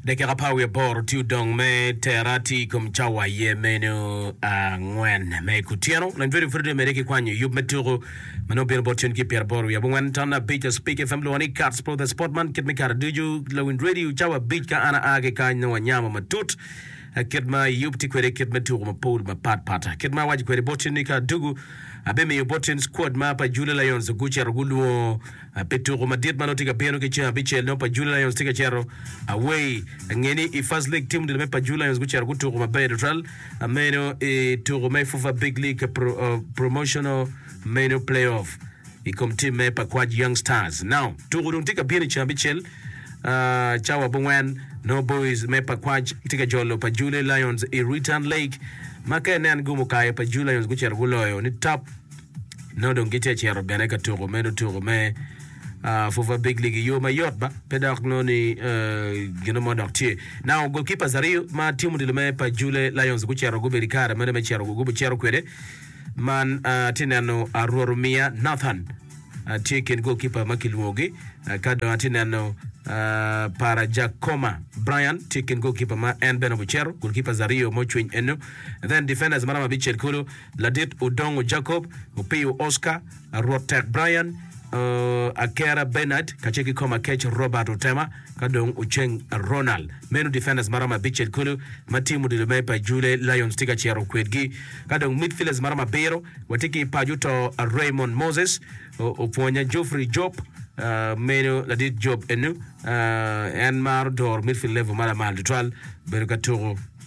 Dakika apar wiye aboro tye odong me tera tye i kom cawa aye meno angwen me kutyeno. Lony Fredo Fredo omede ki kwanyo yub me tuku ma nongo bino bot cen ki pyera aboro wiye abongwen ton abic a Spik FM lwongo ni Cats Pro The Sport man kit me kare ducu lawiny radio cawa abic ka an aa ki kany nongo anyamo matut kit ma yub tye kwede kit me tuku mapol mapat pat kit ma awaco kwede bot cen ni ka adugu abimiyo bot cen squad ma pa Jula Lions gucito gulwongo Pi tuku madit ma nongo tye ka bino ki ceng abicel nongo Paju Lions tye ka cito away. Ange ni i First League tim ducu me Paju Lions gucito gutuku maber tutwal meno i tuku me FUFA Big League Promotional meno Playoff i kom timme pa Kwaj Young Stars. Now tuku dong tye ka bino i ceng abicel cawa abongwen nongo Boys me pa Kwaj tye ka jolo Paju Lions i Return Leg ma ka inen gumo kayo Paju Lions gucito guloyo ni tap Nongo dong gitye ka cito bene ka tuko meno tuko me uh, Fufa Big League i yo mayot ba pe dok nongo ni uh, gino mo dok tye. Now goalkeepers aryo ma tim odilo me pa Jule Lions gucito gubedo i kare mene me cito gubucito kwede man uh, tye neno uh, Rwarumiya Nathan uh, tye kin goalkeeper ma kilwongogi uh, ka dong atye neno uh, para Jakoma Brian tye kin goalkeeper ma en bene obucero goalkeepers aryo ma ocwiny eno then defenders maram abicel kulu Ladit Odongo Jacob, Opiyo Oscar, Rwot Tek Brian, Akera Benard, kacel ki kom akec Robert Otema, ka dong Oceng Ronald. Meno defenders maromo abicel kulu ma tim odilo me pa Jule Lions tye ka ciro kwedgi. Ka dong midfielders maromo abiro, watye ki paco to Raymond Moses, Opwonya Geoffrey Job, meno ladit Job enu, en maro doro midfield level ma lamal tutwal bedo ka tuko.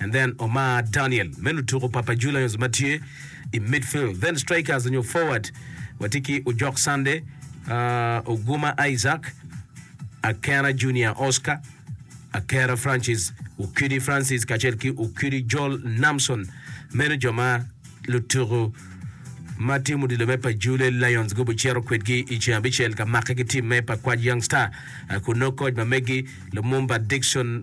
And then Omar Daniel me lutuku Papa Julians ma tye i midfield. Then strikers onyo forward watye ki Ojok Sunday, uh, Oguma Isaac, Akena Junior Oscar, Akera Francis, Okidi Francis kacel ki Okidi Joel Namson. Meno jo ma lutuku ma tim odilo me pa Jule Lions gubo cito kwedgi i ceng abicel ka make ki tim me pa Kwac Young Star. Uh, Kun nongo koc ma megi Lumumba Dickson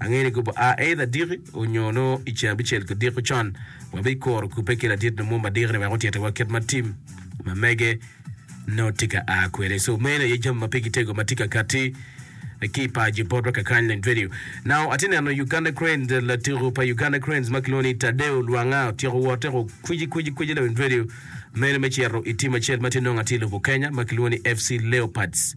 Angeyo ni gubi a either diki onyo nongo i ceng abicel ki diko con wabi kuro kubbe ki ladit nyo mumba diki ni wek otyeto wa kit ma tim ma mege nongo tye ka a kwede. So meno aye jami ma pigi tego ma tye ka katti ki i paci botwa kakany leng twedio. Now atye neno Uganda Cranes latiko pa Uganda Cranes ma kilwongo ni Tadeo Lwanga otyeko wote ko kwici kwici kwici leng twedio meno me cito i tim acel ma tye nongo atye i lobo Kenya ma kilwongo ni FC Leopards.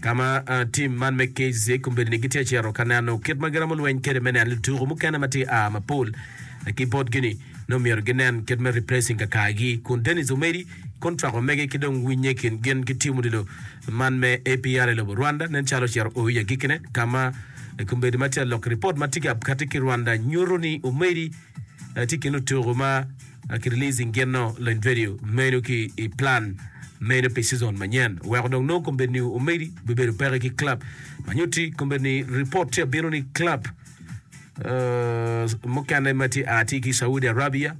ka ma tim man me KZ kombeddi-ni gitye ka cito ka neno kit ma giromo lweny kwede me neno lutuku mukene ma tye ka a mapol ki botgi-ni, nongo myero ginen kit me replacing kakagi. Kun Dennis Omedi, kontrak omege ki dong winnye i kin gin ki tim odilo man me APR i lobo Rwanda nen calo ocito oyo i agikkine, ka ma kombeddi ma tye ka lok ripot ma tye ka katti ki Rwanda nyuto ni Omedi tye i kin lutuku ma Ki releasing gino lony vedio meno ki i plan meno pi season manyen weko dong nongo kombeddi ni omedi bibedo peke ki club ma nyutti kombeddi ni report tye abino ni club uh, mukene ma tye a tye ki Saudi Arabia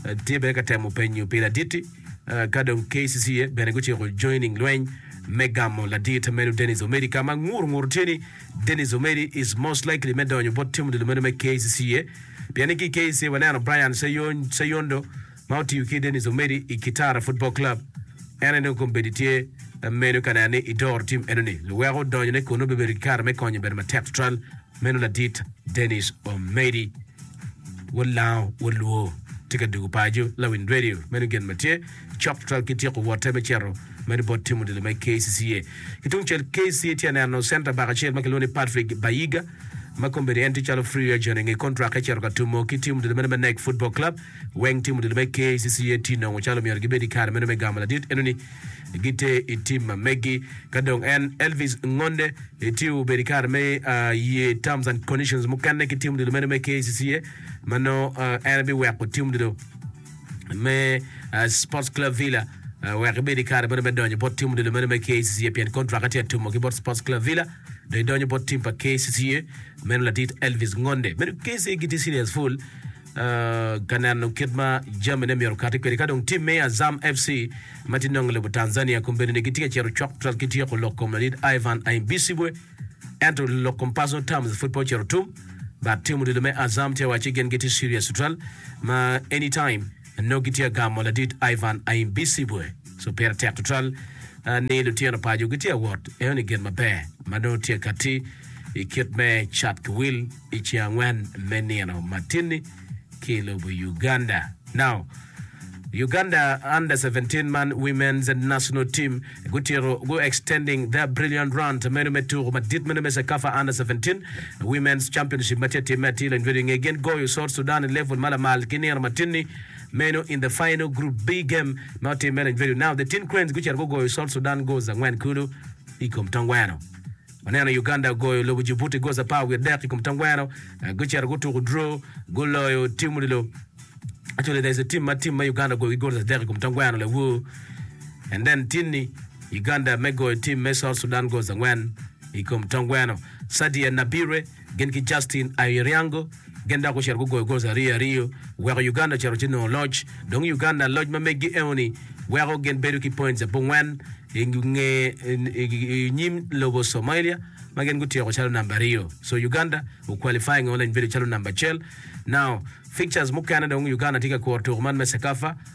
uh, tye bene ka temo penyo pi laditti uh, ka dong KCCA bene guciko joining lweny me gamo ladit meno Dennis Omedi ka ma ngur ngur tye ni Dennis Omedi is most likely me donyo bot tim odilo meno me KCCA pien ni ki i KCCA waneno Brian Seyondo ma otiyo ki Dennis Omedi i Kitara Football Club. En aye dong kombeddi tye meno ka neno ni idoro tim enoni. Luweko donyone kunnu bibedo ki kare me konyo obedo matek tutwal. Meno ladit Dennis Omedi. Wot Lango, wot Luo tye ka dwogo paco Lawiny Radio. Meno gin ma tye. Chapter ki tyeko wote me cito medo bot timo dilo me KCCA. Ki tung cel KCCA tye aneno center back acel ma kilwongo ni Patrick Bayiga ma kombeddi en tye calo free agent inge contract ecito ka tumo ki timo dilo meno me NEC Football Club. Weng timo dilo me KCCA tye nongo calo omyero gibed i kare meno me gamo ladit enoni giter i tim ma megi. Ka dong en Elvis Ngonde tye obedo i kare me ye terms and conditions mukene ki timo dilo meno me KCCA ma nongo en biweko timo dilo me Sports Club Villa wek ibed i kare meno me donyo bot tim odilo meno me KCCA pien kontrak tye atumo ki bot Sports Club Villa do idonyo bot tim pa KCCA meno ladit Elvis Ngonde meno KCCA gitye serious full uh, ka neno kit ma jamine myero kati kwede ka dong tim me Azam FC ma tye nongo i lobo Tanzania kombedone gitye ka cito cok twat ki tyeko lok kom ladit Ivan Aimbisibwe Ento lok kom Personal Terms pud pe ocito tum, but tim odilo me Azam tye wacci gin gitye serious tutwal ma any time nongo gitye ka gamo ladit Ivan Aimbisibwe so pire tek tutwal ni lutino paco gitye ka wot eno ni gin maber ma nongo tye ka ti i kit me cat ki wil. I ceng angwen me nino matinni ki i lobo Uganda. Now, Uganda under 17 man women's national team gutito gu extending their brilliant run to meno me tuku madit meno me Cecafa under 17 women's championship ma tye timme atir lanjwedi i nge gin goyo South Sudan i level ma lamal ki nino matinni meno in the final group B game ma otimme lanjwedi. Now, the Tin Cranes gucito gugoyo South Sudan goals angwen kulu i kom tongweno. Waneno Uganda ogoyo lobo Djibouti goal apar wiye adek i kom tangweno, gucito gutuko draw, guloyo tim odilo. Actually, there's a team ma team ma Uganda ogoyogi goal adek i kom tangweno lawur. And then tinni Uganda me goyo tim me South Sudan goals angwen i kom tangweno. Sadia Nabire gin ki Justin Airiango gin dok gucito gugoyo gols aryo aryo weko Uganda ocito ci nongo loc. Dong Uganda loc ma meggi eoni weko gin bedo ki points abongwen i nge i nyim lobo Somalia ma gin gutyeko calo number aryo. So Uganda gu qualifying only bedo calo number acel. Now fixtures mukene dong Uganda tye ka kuro tuku man me CECAFA.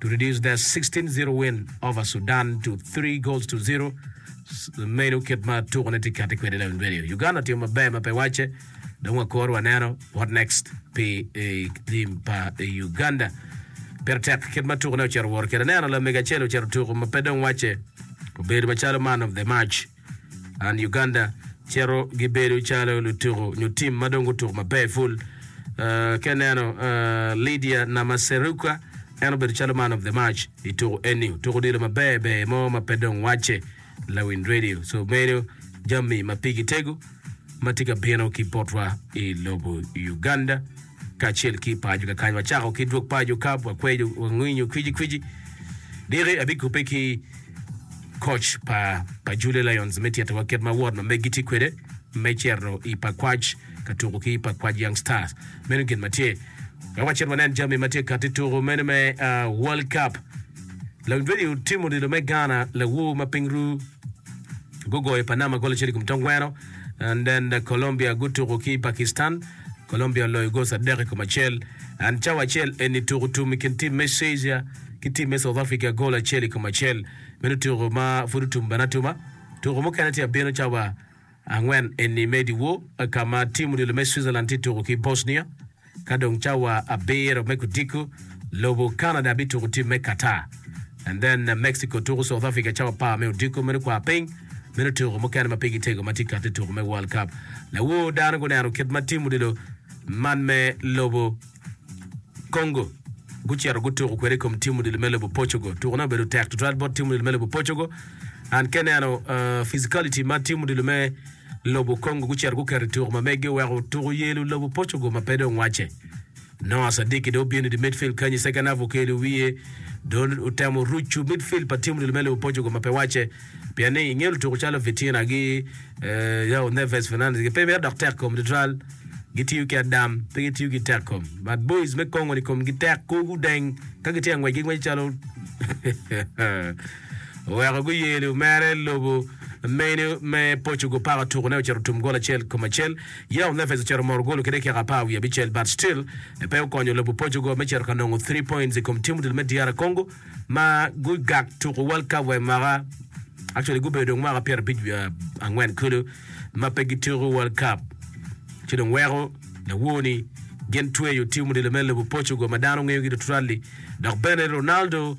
to reduce that 16-0 win over Sudan to 3 goals to 0. Meno kit ma tukone tye kati kwede Levin Radio. Uganda timo maber ma pe wacce. Dong wakor waneno what next pi eh, tim pa eh, Uganda. Pire tek kit ma tukone ocito woro kede. Neno lamege acel ocito tuku ma pe dong wacce obedo macalo man of the match. And Uganda cito gibedo calo lutuku nyo tim ma dong gutuku maber ful. Uh, ka ineno uh, Lydia Namaseruka en obedo calo man of the match i tuku eni. Tuku odilo maber ber mo ma pe dong wacce Lawin Radio. So meno jami ma pigi tego ma tye ka bino ki botwa i lobo Uganda. kacel ki paco kakany. Wacako ki dwog paco kab, wakweco, wangwinyo kwici kwici. Diki abikubbe ki koc pa pa Julia Lions me titowa kit ma wot ma megi tye kwede me cito i pakwac ka tuko ki pakwac Young Stars. Meno gin ma tye. Wek wacit wanen jami ma tye kati tuko meno me ah, World Cup. Lawiny Redi otimo odilo me Ghana lawu ma piny ru. gugoyo Panama gol acel i kom tongweno and then Colombia gutuko ki Pakistan Colombia oloyo gol adek i kom acel and cawa acel eni tuko tum i kin tim me Caesar ki tim me South Africa gol acel i kom acel meno tuko ma pud otum bene atuma tuko mukene tye abino cawa Angwen eni me diwo ka ma tim odilo me Switzerland tye tuko ki Bosnia, ka dong cawa abiro me kudiko lobo Canada bituko tim me Qatar, and then Mexico tuko South Africa cawa apar me odiko meno kwar piny meno tuko mukene ma pigi tego ma tye kati tuko me World Cup. Lawor dano guneno kit ma tim odilo man me lobo. Congo, gucito gutuko kwede i kom timu dilo me lobo Portugal. Tukone obedo tek tutwal bot timu dilo me lobo Portugal. An ke neno uh, physicality ma timu dilo me lobo Congo gucito guketo i tuko ma megi oweko tuko yelo lobo Portugal ma pe dong wacce. Noah Sadiki do obino i midfield kanyi second half okelo wiye do otemo rucu midfield pa timu dilo me lobo Portugal ma pe wacce pien ni inge lutuko calo Vitina gi uh, Neves Fernandes pe mito dok tek kom tutwal. gitiyo ki adam pe gitiyo ki tek kom but boys me kongo ni komgi tek kor gudeng ka gitye angwec gingweco calo oweko guyeli omere lobo meno me Portugal paka otuko ne ocito tum gol acel kom acel Yao Neves ocito moro golo ki dakika apar wiye abicel but still pe okonyo lobo Portugal me cito ka nongo three points i kom team odilo me DR Congo ma gugak tuko World Cup wa i mwaka actually gubedo dong mwaka pyerabic wiye angwen kulu ma pe gituko World Cup ci dong weko lawo ni gin tweyo tim odilo me lobo Portugal ma dano ngeyogi tutwal-li dok bene Ronaldo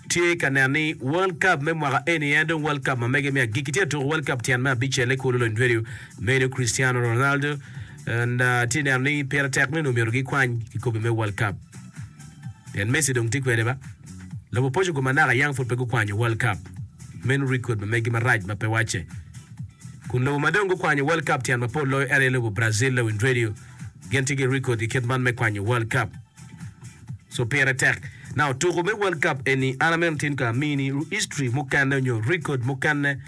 tye ka neno ni World Cup me mwaka eni en dong World Cup ma mege me agikki tye ka tuko World Cup tyen me abicel-le kulu lony tweyo medo Cristiano Ronaldo and uh, tye neno ni pire tek ni onongo myero gikwany kikopo me World Cup Pien Messi dong tye kwede ba. Lobo poco kome naka yam pud pe gukwanyo World Cup. Meno record ma megi marac ma pe wacce. Kun lobo ma dong gukwanyo World Cup tyen mapol loyo en aye lobo Brazil lawiny radio. Gin tye ki record i kit man me kwanyo World Cup. So pire tek. Now tuku me World Cup eni an amito tin ka amini history mukene onyo record mukene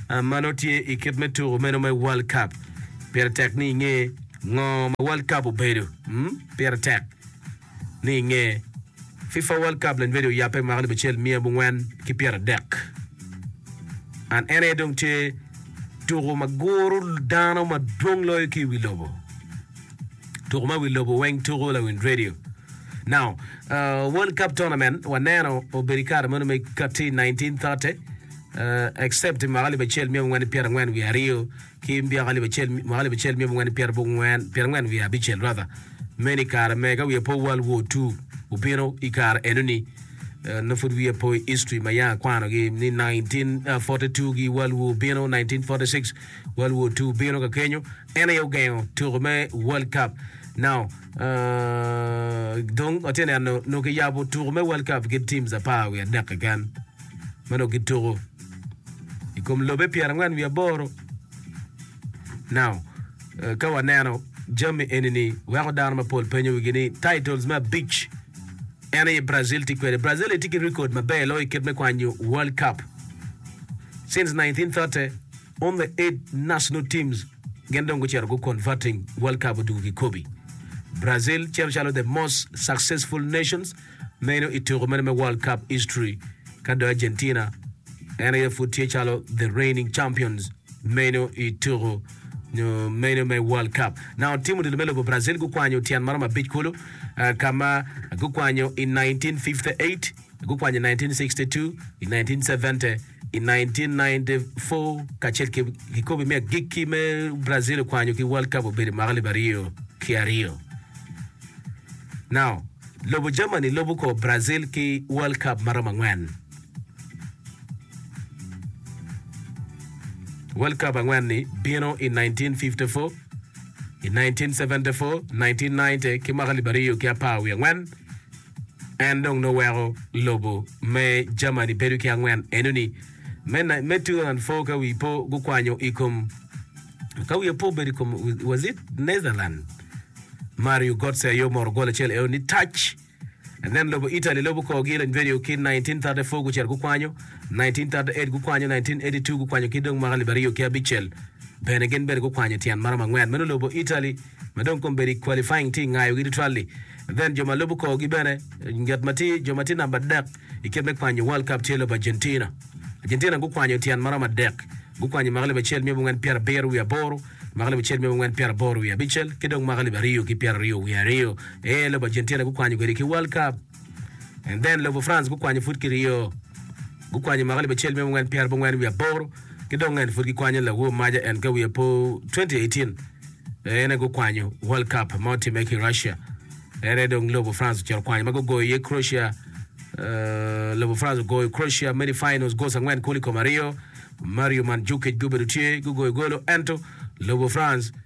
ma nongo tye i kit me tuku meno me World Cup. Pire tek ni inge ngo ma World Cup obedo. Pire tek. ni i nge fifa world cup lanywedi oyabbe mwaka alip acel miya abongwen ki pyera dek and en aye dong tye tuku ma guru dano ma dwong loyo ki i wi lobo tuku ma wi lobo weng tuku lawind radio now uh, world cup tournament waneno obedo i kare meno me kati 1930 uh, except mwaka alip acel miya abongwen ki pyera angwen wi aryo Ki myaka alip acel, mwaka alip acel mia abongwen ki pyera bok ngwen, pyera ngwen wiye abicel ratha, meno i kare me ka wiye po World War Two obino i kare enoni, eh, nongo pud wiye po i history ma yanga akwanogi ni 1942 gi World War obino, 1946 World War Two obino ka kenyo, en aye ogengo tuko me World Cup. Now, eh, dong atye neno nongo kiyabo tuko me World Cup ki teams apar wiye adek keken ma nongo gituko. i kom lobe pyerangwen wiye aboro. Now, eh, ka waneno jami eni-ni, weko dano mapol penyo wigi ni titles me abic en aye Brazil tye kwede. Brazil aye tye ki record maber loyo i kit me kwanyo World Cup. Since 1930, only eight national teams gin dong gucito gu converting World Cup odwogo kikobi. Brazil cito calo the most successful nations Meno i tuko meno me World Cup history ka dong Argentina en aye pud tye calo the reigning champions meno i tuko nyo meno me World Cup. Naon tim odilo me lobo Brazil gukwanyo tyen maromo abic kulu ah, ka ma gukwanyo i 1958, gukwanyo i 1962, i 1970, I 1994 kacel ki kikopo me agikki me Brazil okwanyo ki World Cup obedo i mwaka alip aryo ki aryo. Now, lobo Germany lobo ko Brazil ki World Cup ma romo angwen. World Cup angwen ni bino i 1954, i 1974, 1990 ki mwaka alip aryo ki apar wiye angwen. En dong nongo weko lobo me Germany bedo ki angwen enoni, me, na- me 2004 ka wi po gukwanyo i kom ka wiye po obedo i kom was it Netherland Mario Götze aye omoro gol acel eo ni tac and then lobo Italy lobo korgi i Lanyverio ki 1934 gucito gukwanyo 1938 gukwanyo 1982 gukwanyo ki dong mwaka libaryo ki abicel bene gin bene gukwanyo tyen maromo angwen meno lobo Italy ma dong kom bedi qualifying tye ngayogi tutwal-li, then jo ma lubo korgi bene nget ma tye jo ma tye namba adek i kit me kwanyo World Cup tye lobo Argentina. Argentina gukwanyo tyen ma romo adek, gukwanyo mwaka alip acel myebo ngen pyera abiro wiye aboro, mwaka alip acel myebo ngen pyera aboro wiye abicel ki dong mwaka alip aryo ki pyera aryo wiye aryo aye lobo Argentina gukwanyo kwedi ki World Cup. And then lobo France gukwanyo pud ki ryo. Gukwanyo mwaka alip acel mia abongwen pyera abongwen wiye aboro ki dong en pud gikwanyo lawo maja en ka wiye po 2018 en aye gukwanyo World Cup ma otimme ki Russia. En aye dong lobo France ocito okwanyo ma gugoyo iye Croatia eh, lobo France ogoyo Croatia many finals goals angwen kulu i kom aryo. Mario Mandzukic gubedo tye gugoyo golo ento lobo France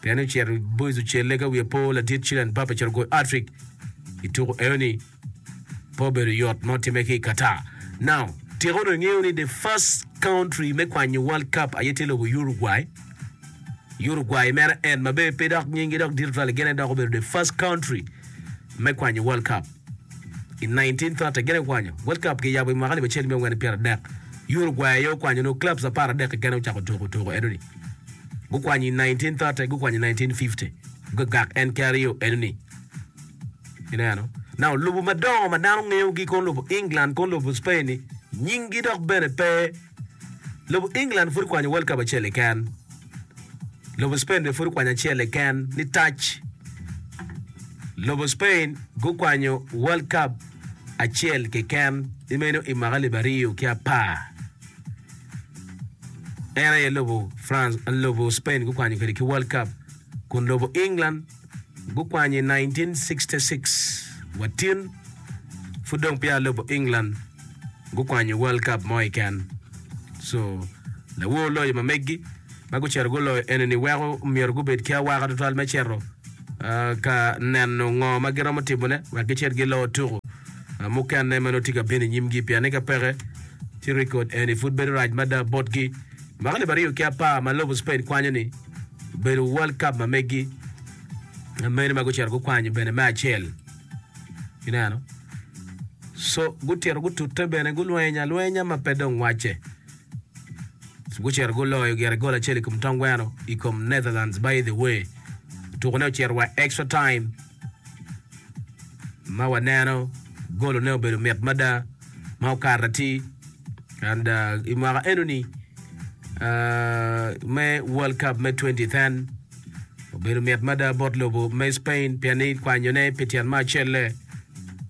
Pien ocito Boiz ocelle ka wiye po ladit Chilean Mbappe ocito goyo hat-trick i tuko eno-ni. Pe obedo yot ma otimme ki i Qatar. Now, tika onongo ingeyo ni the first country me kwanyo World Cup aye tye lobo Uruguay? Uruguay mere en ma bene pe dok nyinggi dok dit tutwal-li gin aye dok obedo the first country me kwanyo World Cup. I 1930, gin aye gukwanyo World Cup ki yabo i mwaka alip acel miya angwen ki pyera adek. Uruguay aye okwanyo, nongo clubs apar adek keken aye ocako tuko tuko enoni. Gukwanyo i 1930, gukwanyo i 1950, gugagak en ki aryo enoni. Ineno? Now, lobo madongo ma dano ngeyogi kono lobo England, kono lobo Spain-ni, nyinggi dok bene pe Lobo England pud kwanyo World Cup acel keken. Lobo Spain bene pud okwanyo acel keken ni tac. Lobo Spain gukwanyo World Cup acel keken ni meno i mwaka alip aryo ki apar. En aye lobo France, lobo Spain gukwanyo kwede ki World Cup kun lobo England gukwany i 1966, wa tin, pud dong peya alubo England gukwanyo World Cup mo keken. So, lawor loyo ma meggi ma gucito guloyo eni-ni weko myero gubed ki awaka twatwal me cito ka neno ngo ma giromo timone wek gicit gilo tuku mukene ma nongo tye ka bino i nyimgi pien ni ka peke ci rekod eni pud bedo rac mada botgi. Mwaka alip aryo ki apar ma lobo Spain kwanyo-ni, obedo World Cup ma megi ma mene ma gucito gukwanyo bene me acel ineno so gucito gutute bene gulweny alwenya ma pe dong wacce gucito guloyo gire gol acel i kom Tom Gweno i kom Netherlands by the way tukone ocito wa extra time ma waneno golone obedo mit mada ma okato atir and i mwaka enoni me World Cup me 2010 obedo mit mada bot lobo me Spain pien ni kwanyone pi tyen me acelle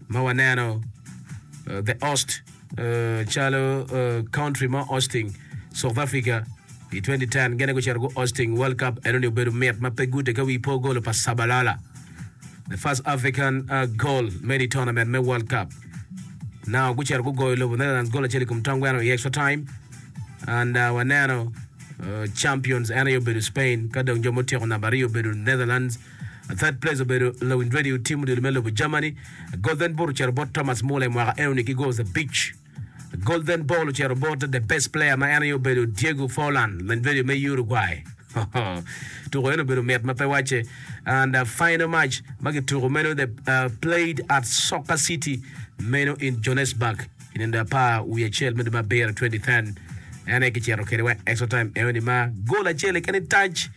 ma waneno The Host calo country mo Austing, South Africa i 2010 gene gucito gu Austing World Cup enoni obedo mit ma pe gute ka wi po golo pa Shabalala the first African uh, goal made i tournament me World Cup now gucito gugoyo lobo Netherlands gol acel i kom tong gweno i extra time and uh, waneno uh, champions ene obedo Spain ka dong jo mutyeko namba aryo obedo Netherlands A Third place obedo lawiny radio tim odilo me lobo Germany. A Golden Boot ocito bot Thomas Muller i mwaka enoni ki goals abic. A Golden Ball ocito bot the best player ma en aye obedo Diego Forlan, lawiny radio me Uruguay. Tuko eni obedo mit ma pe wacce. And a final match ma kituko meno the uh, played at Soccer City meno in Johannesburg. I nino apar wiye acel me dwe me abiro 2010, en aye kicito kwede wa i extra time eoni ma gol acel keken i tac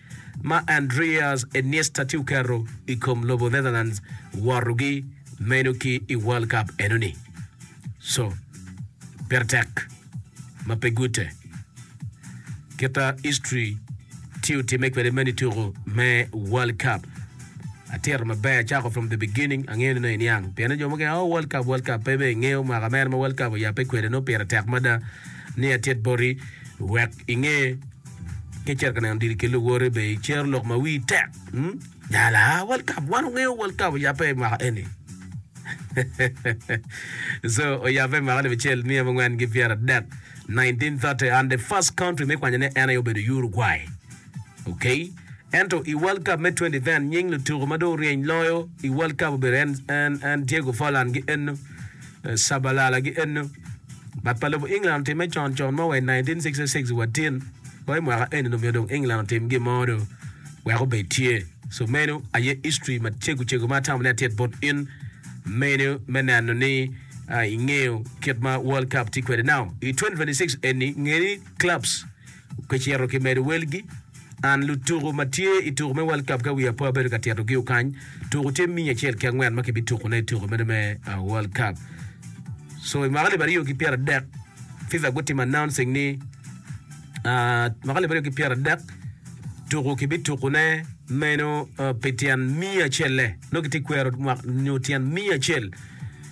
ma Andreas Iniesta tye oketo i kom lobo Netherlands wotogi meno ki i World Cup enoni. So, pire tek ma pe gute. Kita history tye otime kwede man i tuku me World Cup. Atito maber acako from the beginning angeyo ni iniang. Pien jo mukene oh World Cup World Cup pe be ingeyo mwaka mere ma World Cup oyape kwede no pire tek mada ni atit boti wek inge ki cito ka neno diri ki luwoti be icero lok ma wii tek. Hmm? Nyala, World Cup, wan ongeyo World Cup oyabbe i mwaka eni. so oyabbe i mwaka alip acel miya mangwen ki pyera dek 1930 and the first country me kwanyo ne en aye obedo Uruguay. Okay. Ento i World Cup me 2010 nying lutuko ma dong oryeny loyo i World Cup obedo en, en, en Diego Forlan ki Enno. Caballalagi ennu. Bat pa lobo England otimme con con mo wa i 1966 wa tin wa i mwaka eni-nu omyero dong England otim gin mo do wek obed tye. So meno aye history macego cego ma atamo ni atit bot in meno me neno ni ingeyo kit ma World Cup tye kwede. Now i 2026 eni nge ni clubs Kicito ki medo welgi, and lutuku ma tye i tuku me World Cup ka wiye apo abedo ka tito giu kany. Tuku tye minya acel ki angwen ma kibi tuku ne i tuku meno me World Cup. So i mwaka alip aryo ki pyera dek, FIFA gutimo announcing ni uh, mwaka alip aryo ki pyera dek tuku kibi tuku ne meno uh, pi tyen miya acelle. Nongo kitye kwero nyo tyen miya acel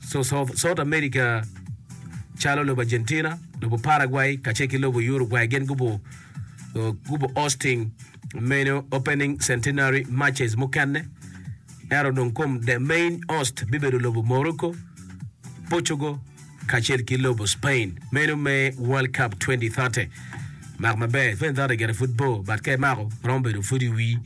South America calo lobo Argentina, lobo Paraguay kacel ki lobo Uruguay gin gubo gubo hosting meno opening centenary matches mukene ento dong kom the main host bibedo lobo Morocco, Portugal kacel ki lobo Spain meno me World Cup 2030. Mak maber 2030 gire pud bor but ka imako romo bedo pud iwi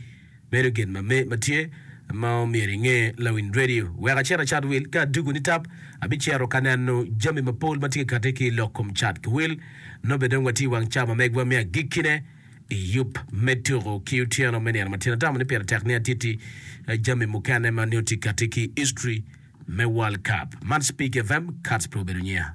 Bedo gin ma me ma tye ma omyero inge lawiny radio. Wek acit acat wil ka adugu ni tap, abicito ka neno jami ma pol ma tye kati ki ilok kom cat ki wil. Nobbe dong watye iwang ca ma megwa me agikkine i yub me tuku ki otyeno me nino matin. Atamo ni pire tek ni atiti jami mukene ma nio tye kati ki history me World Cup. Man Speak FM, Kats pe obedo nyiya.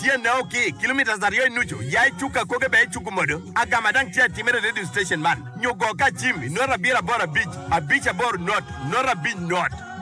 Tye nao ki kilometres aryo i nucu ya i cuk akoge bene i cuk modo agama dang tye atimere i radio station man nyo go ka cim i note abiro aboro abic abic aboro note note abic note.